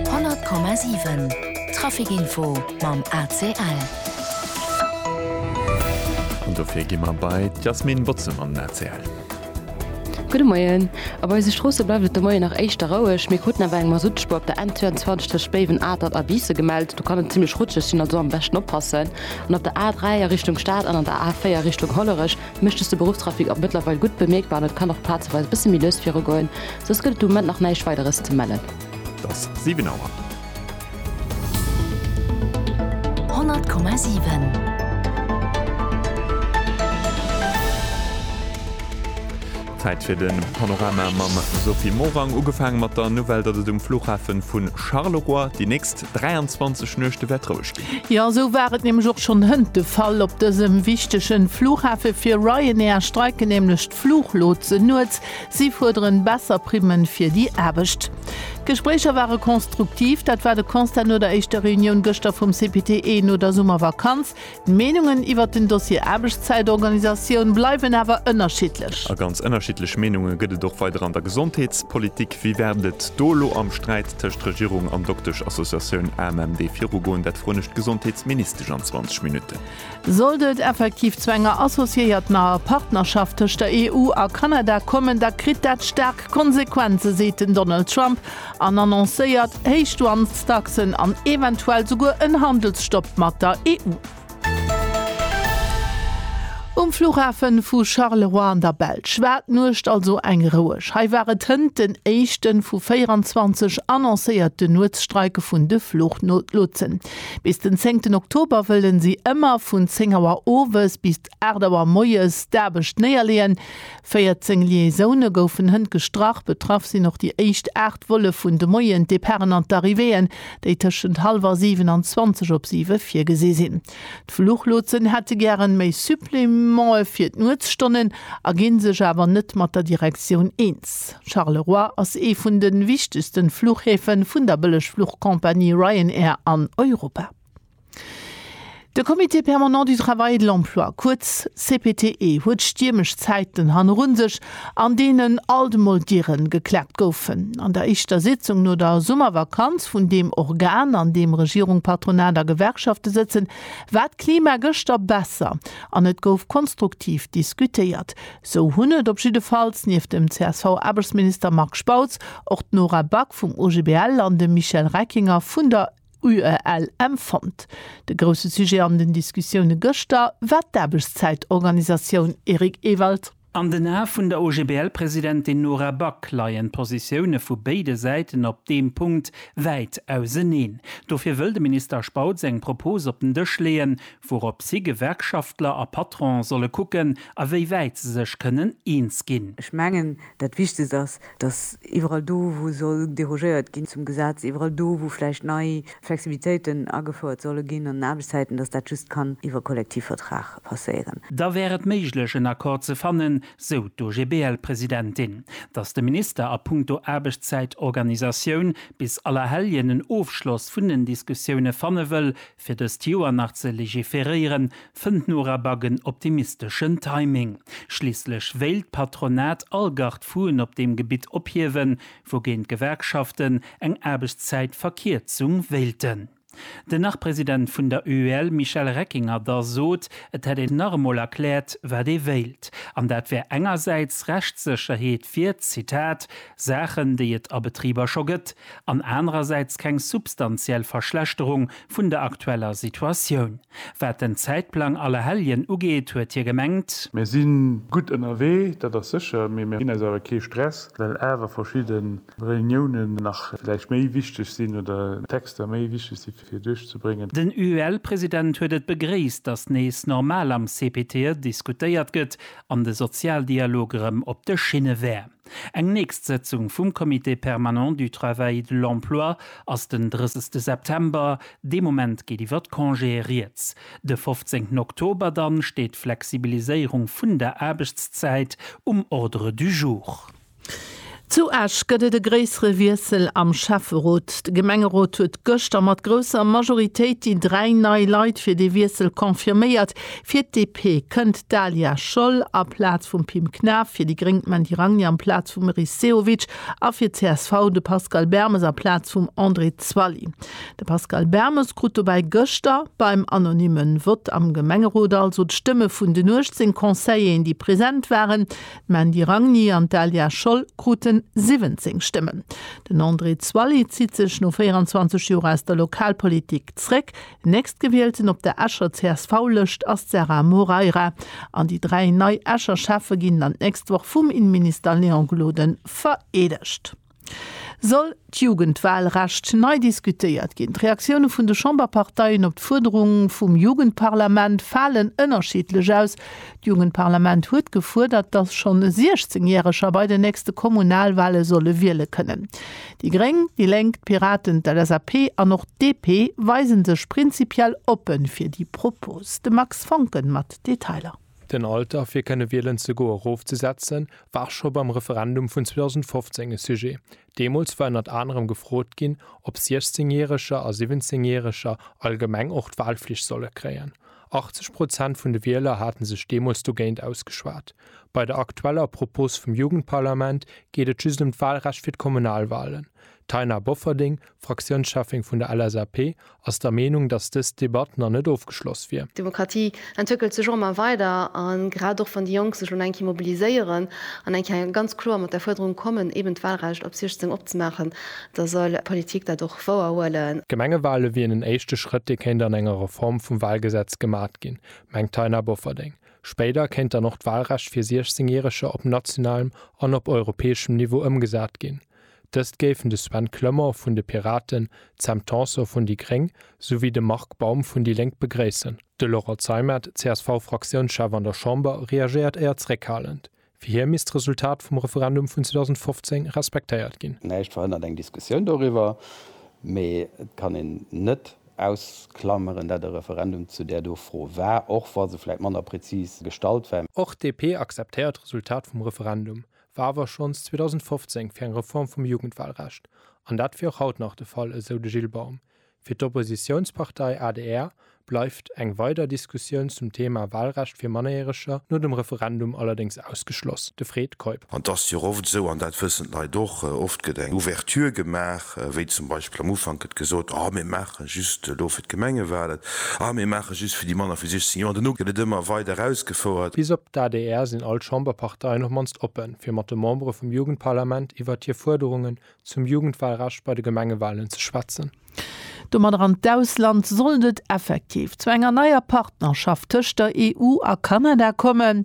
100,7 Trafic Info mam ACL. An dofir gi mer bei d'Yasmine Botze mam ACL. Gudde Moien. Op eise Stroosse bleift et de Moien nach éischter roueg, mee kruten awer eng Masuttspuer op der N 22 tëscht Béiwen, Atert a Biissen gemellt. Do kann et zimmlech rutscheg sinn, also am beschten oppassen. An op der A 3 a Richtung Stad an an der A 4 Richtung Hollerech Mécht dëst de Beruffstrafic och mëttlerweil gutt bemierkbar an et kann och plazeweis e bësse méi lues virugoen, soss gëtt et de Moment nach näischt Weideres ze mellen. Et ass 7 Auer. 100,7. Zäit fir de Panorama mam Sophie Morang. Ugefaange mat der Nouvelle, datt et um Flughafe vu Charleroi déi nächst. 23 Nuechte wäert roueg ginn. Jo, esou war et nämlech och schonn hënt de Fall op dësem wichtege Flughafe. Fir Ryanair streiken nämlech d'Fluchlotsen nuets. Si fuerderen besser Primme fir déi Aarbecht. D'Gespréicher ware konstruktiv, dat war de Constat no der éischter Reunioun gëschter vum CPTE no der Summervakanz. D'Meenungen iwwert den Dossier Aarbechtszäitorganisatioun bleiwen awer ënnerschiddlech. A ganz ënnerschiddlech Meenunge gëtt et och weider an der Gesondheetspolitik. Wéi wäert et do elo am Sträit tëscht Regierung an Dokteschassociatioun AMMD virugoen? Dat froen ech d'Gesondheetsministesch an 20 Minutten. Sollt et effektiv zu enger associéiertener Partnerschaft tëscht der EU a Kanada kommen, da kritt dat staark Konsequenzen, seet den Donald Trump an annoncéiert Héichdouanestaxen an eventuell souguer en Handelsstopp mat der EU. Um Flughafe vu Charleroi an der Belsch war d'Nuecht also eng roueg. Hei war et hënt den éischte vu 24 annoncéierten Nuetsstreike vun de Fluchlotsen. Bis den zéngten Oktober wëlle si ëmmer vun 10 Auer owes bis 8 Auer moies d'Aarbecht néierleeën. 14 Liaisoune goufen hënt gestrach. Betraff sinn och déi éischt 8 Volle vun de Moien, d'Departen an d'Arrivéeën, déi tëschent hallwer 7 an 20 op 7 virgesi sinn. D'Fluchlotsen hätte gären méi Supplémente fir d'Nuetsstonnen a ginn sech awer net mat der Direktioun eens. Charleroi ass ee vun de wichtegsten Fluchhäfe vun der Bëllegfluchcompagnie Ryanair an Europa. De Comité permanent du travail et de l'emploi, kuerz CPTE, huet stiermesch Zäiten hanneru sech, an deenen alt mol Diere geklappt goufen. An der éischter Sitzung no der Summervakanz vun deem Organ, an deem Regierung, Patronat a Gewerkschafte sëtzen, war d'Klima gëschter besser an et gouf konstruktiv diskutéiert. Sou hunn et op jiddefalls nieft dem CSV-Aarbechtsminister Marc Spautz och d'Nora Back vum OGBL an de Michel Reckinger vun der UELM fonnt. De grousse Sujet an den Diskussioune gëschter war d'Aarbechtszäitorganisatioun, Eric Ewald. An den Ae vun der OGBL-Presidentin Nora Back leien d'Positioune vu béide Säiten op deem Punkt wäit auseneen. Dofir wëll de Minister Spautz eng Propos op den Dësch leeën, wourop si, Gewerkschaftler a Patron, solle kucken, a wéi wäit se sech kënnen eens ginn. Ech mengen, dat Wichtegst ass, datt iwwerall do, wou soll derogéiert ginn zum Gesetz, iwwerall do, wou vläicht nei Flexibilitéiten agefouert solle ginn an den Aarbechtszäiten, datt dat just kann iwwer Kollektivvertrag passéieren. Da wär et méiglech, en Accord ze fannen, sou d'OGBL-Presidentin. Datt de Minister a punkto Aarbechtszäitorganisatioun bis Allerhelljen en Ofschloss vun den Diskussioune fanne wëll, Fir dëst Joer nach ze legiferéieren, fënnt Norabag en optimisteschen Timing. Schliisslech wéilt d'Patronat all Garde-fou'en op deem Gebitt ophiewen, wougéint d'Gewerkschaften eng Aarbechtszäitverkierzung wéilten. Den Nach-President vun der UEL Michel Reckinger da sot, et hätt een nach emol erkläert, wat ee wéilt. An dat wär engersäits Rechtssécherheet fir, Zitat, Saachen, déi et a Betriber scho gëtt, an anerersäits keng substantiell Verschlechterung vun der aktueller Situatioun. Wat den Zäitplang Allerhelljen ugeet, huet hie gemengt. Mir si gutt ënnerwee, dat ass sécher, mee mir ginn eis awer kee Stress, well awer verschidde Reuniounen nach vläicht méi wichteg sinn oder Texter méi wichteg si fir duerchzebréngen. Den UEL-President huet et begréisst, datt nees normal am CPTE diskutéiert gëtt an de Sozialdialog erëm op de Schinne wär. Eng nächst Sëtzung vum Comité permanent du travail et de l'emploi ass den 30 September, dee Moment geet iwwer d'Congéë rieds. De 15 Oktober dann steet d'Flexibiliséierung vun der Aarbechtszäit um Ordre du jour. Zu Esch gëtt et e gréissere Wiessel am Schäfferot. De Gemengerot huet gëschter mat grousser Majoritéit déi dräi nei Leit fir dee Wiessel confirméiert. Fir d'DP kënnt d'Dalia Scholl a Plaz vum Pim Knaff, fir déi Gréng d'Mandy Ragni am Plaz vum Meris Sehovic a fir d'CSV de Pascal Bermes a Plaz vum André Zwally. De Pascal Bermes krut dobäi gëschter beim anonymme Vott am Gemengerot also d'Stëmme vun den 18 Conseilléen, déi present waren. D'Mandy Ragni an d'Dalia Scholl krute 17 Stëmmen. Den André Zwally zitt sech no 24 Joer aus der Lokalpolitik zréck. Nächstgewielten op der Escher CSV-Lëscht ass d'Sarah Moreira an déi dräi nei Escher Schäffe ginn dann d'nächst Woch vum Innenminister Léon Gloden vereedegt. Soll d'Jugendwahlrecht nei diskutéiert ginn? D'Reaktioune vun de Chamberparteien op d'Fuerderung vum Jugendparlament falen ënnerschiddlech aus. D'Jugendparlament huet gefuerdert, datt schonn 16 Järeger bei den nächste Kommunalwale solle wiele kënnen. Déi Gréng, déi Lénk, d'Piraten, d'LSAP an och d'DP weise sech prinzipiell oppe fir déi Propos. De Max Foncken mat Detailer. Den Alter fir kënne wielen ze goe rof ze setzen, war scho beim Referendum vun 2015 e Sujet. Deemools war ënnert anerem gefrot ginn, ob 16 Järeger a 17 Järeger allgemeng och d'Walflicht solle kréien. 80 Prozent vun de Wieler hate sech deemools dogéint ausgeschwat. Bei der aktueller Propos vum Jugendparlament geet et just ëm d'Walrecht fir d'Kommunalwalen. D'Taina Bofferding, Fraktiounscheffin vun der LSAP, ass der Meenung, datt dës Debatt nach net ofgeschloss wier. D'Demokratie entwéckelt sech och ëmmer weider a grad och wann déi Jonk sech elo nach eng Kéier mobiliséieren an eng Kéier ganz kloer mat der Fuerderung kommen, eeben d'Wahlrecht op 16 opzemaachen, da soll d'Politik dat och wouerhuelen. D'Gemengewale wieren en éischte Schrëtt, dee kéint an enger Reform vum Wahlgesetz gemat ginn, mengt d'Taina Bofferding. Spéider kéint dann och d'Wahlrecht fir 16 Järeger op nationalem an op europäeschem Niveau ëmgesat ginn. Dëst géifen de Sven Clement vun de Piraten, d'Sam Tanson vun déi gréng souwéi de Marc Baum vun déi Lénk begréissen. De Laurent Zeimet, CSV-Fraktiounschef an der Chamber, reagéiert éier zréckhalend. Fir hie misst d'Resultat vum Referendum vun 2015 respektéiert ginn. Näischt verhënnert eng Diskussioun doriwwer, mee et kann een net ausklameren, dat e Referendum zu där do Fro war, och wa se vläit manner prezis gestallt war. Och d'DP akzeptéiert d'Resultat vum Referendum, war awer schonns 2015 fir eng Reform vum Jugendwahlrecht, an dat wier och haut nach de Fall, esou de Gilles Baum. Fir d'Oppositiounspartei adr bleift eng weider Diskussioun zum Thema Wahlrecht fir Mannerjäreger no dem Referendum allerdéngs ausgeschloss, de Fred Keup. An et ass jo och oft esou, an dat wëssen d'Leit och, oft gëtt eng Ouverture gemaach, wéi zum Beispill am Ufank gëtt gesot, oh mir maachen. Just elo fir d'Gemengewalen. Ah, mir maache just fir déi manner wéi 16 Joer. An duerno gëtt et ëmmer weider erausgefouert. Bis op d'ADR sinn all d'Chamberparteien op mannst oppen, fir mat de Membere vum Jugendparlament iwwert hir Fuerderungen zum Jugendwalrecht bei de Gemengewalen ze schwätzen. Domadder an d'Ausland. Sollt et effektiv zu enger neier Partnerschaft tëscht der EU a Kanada kommen,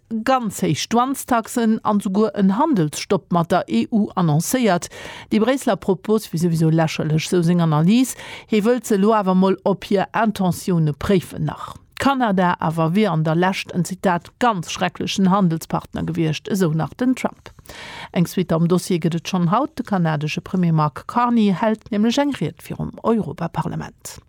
ganz héich Douanestaxen an souguer en Handelsstopp mat der EU annoncéiert. Déi Bréisseler Propos wier souwisou lächerlech, sou seng Analys. Hee wëllt se elo awer mol op hir Intentioune préifen. Nach Kanada awer wier an der Lescht en, Zitat, ganz schrecklechen Handelspartner gewiescht, esou nach den Trump. Eng Suite am Dossier gëtt et schonn haut. De kanadesche Premier Mark Carney hält nämlech eng Ried virum Europaparlament.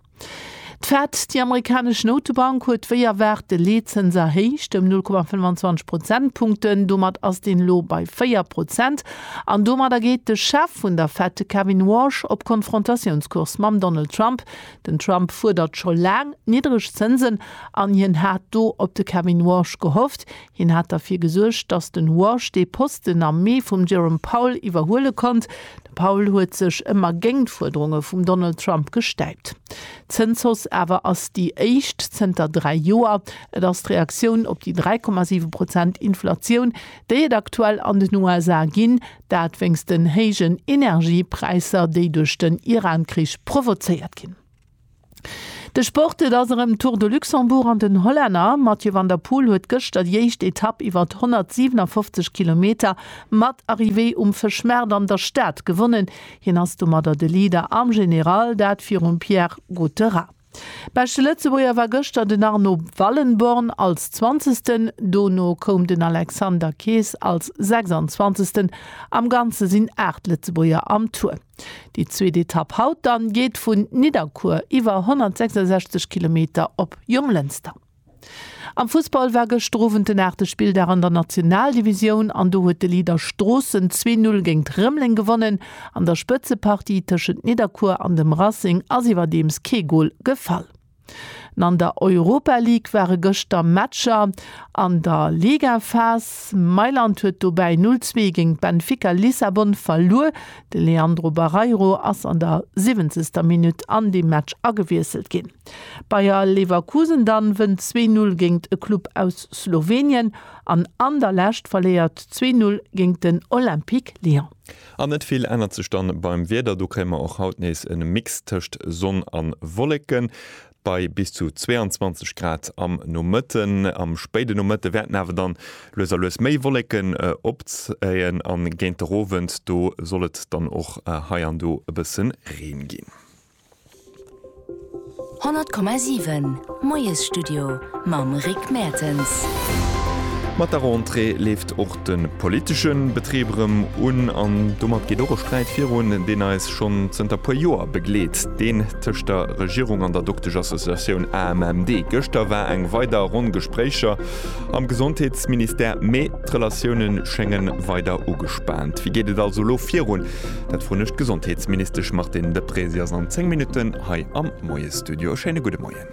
D'Fed, déi amerikanesch Noutebank, huet wéi erwaart de Leetzëns erhéicht, ëm 0,25 Prozentpunkten. Domat ass deen elo bei 4 Prozent an domadder geet de Chef vun der Fed, de Kevin Warsh, op Konfrontatiounscourse mam Donald Trump. Den Trump fuerdert scho laang niddreg Zënsen an hien hat do op de Kevin Warsh gehofft. Hien hat derfir gesuergt, datt den Walsh dee Posten am Mee vum Jerome Powell iwwerhuele konnt. De Powell huet sech ëmmer géint d'Fuerderunge vum Donald Trump gestäipt. D'Zënshausse awer ass déi éischt zënter dräi Joer. Et ass d'Reaktioun op déi 3,7 Prozent Inflatioun, déi et aktuell an den USA ginn, dat wéinst den héijen Energiepräisser, déi duerch den Iran-Krich provozéiert ginn. De Sport, Et ass erëm Tour de Luxembourg an den Hollänner Mathieu van der Poel huet gëschter déi éischt Etapp iwwert 157 Kilometer mat Arrivée um Fëschmaart an der Stad gewonnen. Hien ass domadder de Leader am General, dat virum Pierre Gautheret. Beschte Lëtzebuerger war gëschter den Arno Wallenborn als Zwanzegsten, dono koum den Alexander Kees als Sechsanzwanzegsten. Am Ganze sinn 8 Lëtzebuerger am Tour. Déi zweet Etapp haut dann geet vun Nidderkuer iwwer 166 Kilometer op Jonglënster. Am Fussball war gëschter Owend den aachte Spilldag an der Nationaldivisioun an do huet de Leader Stroossen zwee Null géint Rëmeleng gewonnen. An der Spëtzepartie tëschent Nidderkuer an dem Racing ass iwwerdeems kee Gol gefall. An an der Europa League ware gëschter Matcher an der Ligaphas. Mailand huet dobäi 0, 2 géint Benfica Lissabon verluer. De Leandro Barreiro ass an der 70. Minutt an dee Match agewiesselt ginn. Bayer Leverkusen dann wënnt 2, 0 géint e Club aus Slowenien an an der Lescht verléiert 2, 0 géint den Olympique Lyon. An net vill ännert sech dann beim Wieder, do kréie mer och haut nees en Mix tëscht Sonn an Wolleken bei bis zu 22 Grad am Nomëtten. Am spéiden Nomëtte wäerten awer dann lues a lues méi Wolleken opzéien an géint der Owend do soll et dann och hei an do e bëssen Reen ginn. 100,7 Moiesstudio mam Rick Mertens. Mat der Rentrée leeft och de politesche Betrib erëm un an domat geet och e Sträit virun, deen eis schonn zënter e puer Joer begleet, deen tëscht der Regierung an der Dokteschassoziatioun AMMD. Gëschter war eng weider Ronn Gespréicher am Gesondheetsministère, mee d'Relatioune schénge weider ugespaant. Wéi geet et also elo virun? Dat frun ech d'Gesondheetsministesch Martine Deprez. Si ass an 10 Minutten hei am Moiesstudio. E schéine gudde Moien.